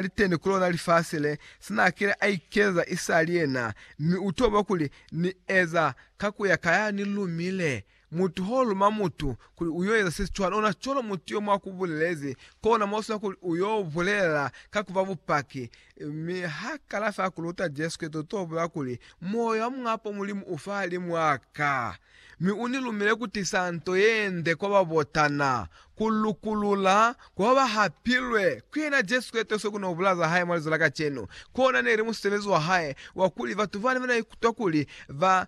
li teni ku lona lifasi le, se n'a kile a ikeza i sa li yena, mi u toba kuli, Ni eza ka ku ya ka ya ni lumile. Mutu h'o luma mutu kuli u y'o eza se si cwana, ona cwalo mutu yo mw'a ku bulelezi, kona m'o sina kuli u y'o bulela ka ku fa bupaki. Mi h'a kala fa ku luta Jesu Kreste, u t'o bulel'a kuli, Moya wa Muñ'a Po Mulimu u fahalimw'a ka. Mi u ni lumile ku tisa nto ye nde kwa ba botana, ku lukulula ku ba ba hapilwe ku yena Jesu ka itokiso ku no bula za hae mwa lizo la kacenu. Kona ne li musebezi wa hae wa kuli batu bane ba na ikutwa kuli ba,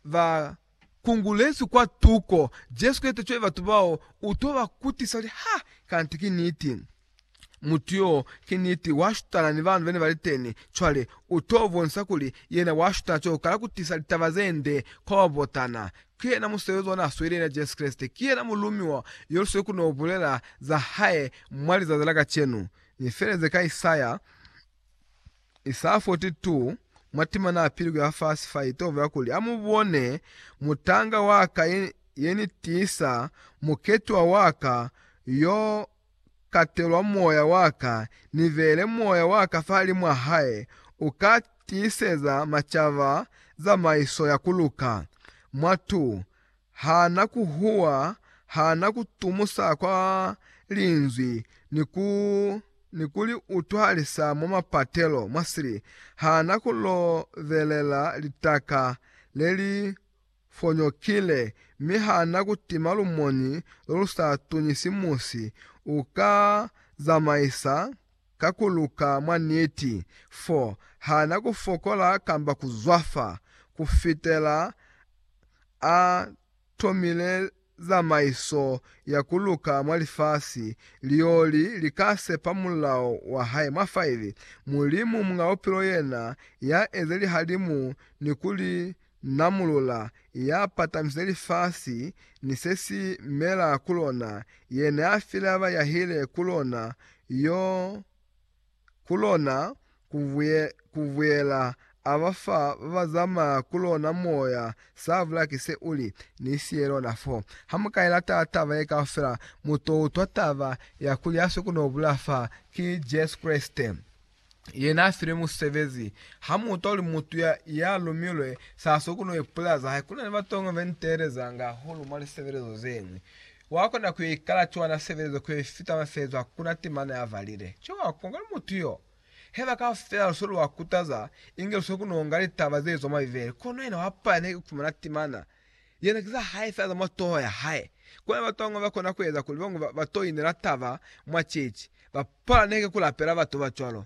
ba kungulezwi kwa tuko, Jesu ka itokiso cwale batu bao u to ba kutisa kuli, Ha! Kanti ki niti. Mutu yo, ki niti, wa shutana ni banu bene bali teni. Cwale, u to bonisa kuli yena wa shutana cwalo kala ku tisa litaba ze nde kwa ba botana. Ki yena musebezi ona a sweli, yena Jesu Kreste. Ki yena mulumiwa yo lu sweli ku no bulela za hae mwa lizazi la kacenu. Ni feleze ka Isaya, Isaya 42, mwa timana ya pili ku ya fasi fa, i to bulela kuli, A mu bone, mutanga wa ka, ye, ye ni tisa, muketiwa wa ka, yo katelwa moya wa ka, ni beele moya wa ka fahalimw'a hae, u ka tiiseza macaba zamaiso ya ku luka. Mwatu ha na ku huwa, ha na ku tumusa kwa Linzwi ni ku li utwahalisa mwa mapatelo, mwa sili, ha na ku lobelela litaka le li fonyokile, mi ha na kutima lumoni lolusa tunyisi musi, u ka zamaisa ka kuluka mwa niti, fo ha na kufokola kamba kuzwafa, kufitela a tomile. zamaiso ya ku luka mwa lifasi, lioli li ka sepa mulao wa hae mwa faili. Mulimu Muñ'a Bupilo yena ya eze lihalimu ni ku li namulula, ya patamisile lifasi ni se si mela ku lona, yena ya file ba ba yahile ku lona, yo ku lona ku buyela a ba fa ba ba zamaya ku lona moya sa bula ki se u li, Ni siye lona fo. Ha mu ka i lata taba ye kaufela, mu to utwa taba ya kuli ha si ku no bula fa, ki Jesu Kreste ye n'a filwe musebezi. Ha mu utwa kuli mutu ya, ya lumilwe sa si ku no ipulaza hae. Ku na ni batonga be ni teelezanga hahulu mwa lisebelezo ze ñwi. Wa kona ku ikala cwa na sebelezwe ku fita mafeezwa ku na temana ya valile. Cwa wa kuwa kuli mutu yo. Haiba kaufela lu se lu wa kutaza, inge lu se ku no nga litaba ze zwa mwa Bibele, kono yena wa palelwa ni ku fumana temana. Yena ki za hae fela za mwa toho ya hae. Kono batu ba bañwi ba kona ku eza kuli bañwi ba to inela taba mwa ceeci. Ba palelwa ni heke ku lapela batu ba cwalo.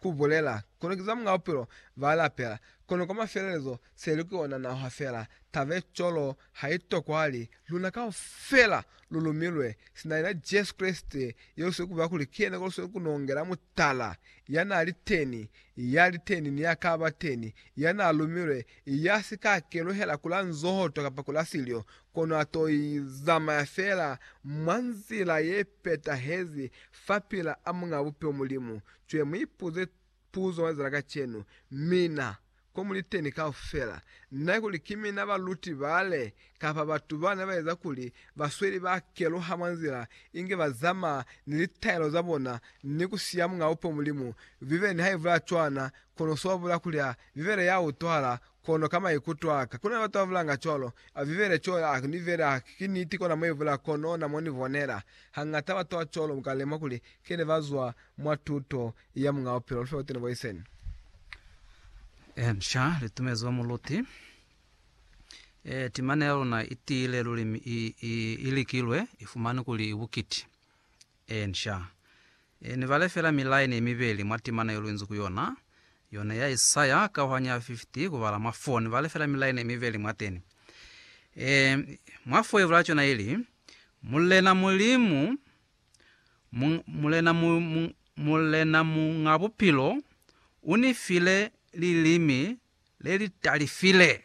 Ku bulela, kono ki za Muñ'a Bupilo ba lapela, kono kwa mafelelezo se li ku yona naho ha fela tabe cwalo ha i tokwali. Luna kaufela lu lumilwe sina yena Jesu Kreste, yo lu sili ku bulela kuli ki yena ko lu sili ku nongela mutala, ya n'a li teni, ya li teni, ni ya ka ba teni, ya n'a lumilwe, ya si ka keluhela ku la nzohoto kapa ku la silyo, kono a t'o zamaya fela mwa nzila ye petahezi fapil'a Muñ'a Bupilo, Mulimu. Cwale mu ipuze puzo mwa liza la kacenu, Mina, ko muli teni kaufela, na kuli ki mina baluti bale, kapa batu ba ne ba eza kuli basweli ba keluha mwa nzila inge ba zamaa ni litaelo za bona ni ku siya Muñ'a Upo Mulimu, Bibele nihaibula cwana, kono swa bula kuli ha Bibele ya utwahala Kono ka maikuto aka, kuna batu babulanga cwalo, abibele co ya aku ni bela haki ki niti kona muibula kono na moni bonela. Hangata batu ba cwalo muka lemuha kuli kene ba zwa mwa tuto ya Muñ'a Bupilo. Lufe butuna bo iseni. Inca li tumezwa muluti. E, timana ya luna i tiile luli mi i, i, i likilwe, i fumani kuli i bukiti. Eensha. E ne ba lefela milaini ye mibeli mwa timana yo luinzi ku yona, yona ya Isaya, kauhanyo ya 50, ku bala mwa 4. Ne ba lefela milaini ye mibeli mwateni. E, mwa 4 ibulala cona ili, Mulena Mulimu, mu, Mulena, mu, mu, Mulena Muñ'a Bupilo, u ni file lilimi le li talifile.